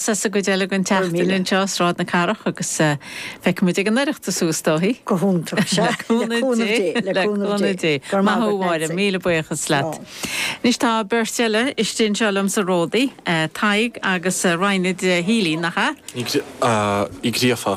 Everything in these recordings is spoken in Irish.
Sa sa gcuid eile den tseachtain anseo, Sráid na Cathrach agus feicfimid ag an Oireachtas suas dói. Go hiontach, sea. Le cúnamh Dé, le cúnamh Dé. Maith thú a Mháire, míle buíochas leat. Anois tá beirt eile istigh anseo liom sa Ródaí, Tadhg agus Raghnaid Healy, nach ea? Ní Gríofa.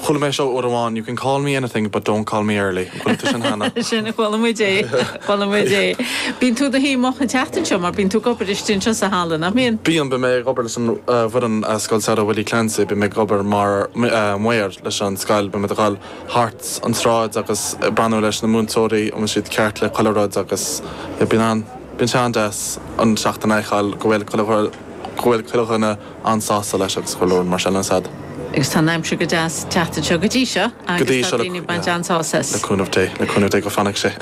Chuala mé seo uair amháin, you can call me anything but don't call me early. Chuala tú sin cheana? Chuala, chuala muid é, chuala muid é. Bíonn tú i do shuí moch an tseachtain seo mar bíonn tú ag obair istigh anseo sa halla, nach mbíonn? Bíonn, bíonn mé ag obair leis an bhfoireann i Scoil Samhraidh Willie Clancy, bíonn mé ag obair mar maor leis an scoil, bíonn muid ag gabháil thart an tsráid agus ag breathnú leis na múinteoirí an bhfuil siad ceart le chuile rud agus bíonn an, bíonn sé an-deas an seachtain a fheiceáil go bhfuil chuile, go bhfuil chuile dhuine. an-sásta leis agus go leor mar sin ansin. Agus tá an aimsir go deas ag teacht anseo go dtí seo. Go dtí seo, yeah. Agus tá daoine ag baint an-sásamh as. Le cúnamh Dé, le cúnamh Dé go fanfaidh sé.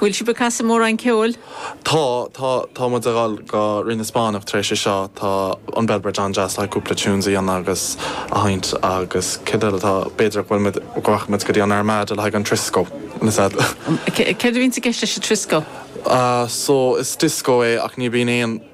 Bhfuil sibh ag casadh mórán ceoil? Tá, tá, tá muid ag dhul go Rinn na Spáinneach tar éis é seo, tá an Bellbridge an-deas le cúpla tunes a dhéanamh agus a sheinnt agus céard eile atá, b'fhéidir go bhfuil muid, go rachaidh muid go dtí an Armada le haghaidh an Trisco ansin. Céard a bhíonns i gceist leis an Trisco? Ah, so, is disco é ach ní bhíonn aon.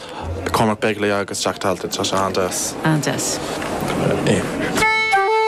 Cormac Begley agus Jack Talty, tá sé an-deas. an-deas.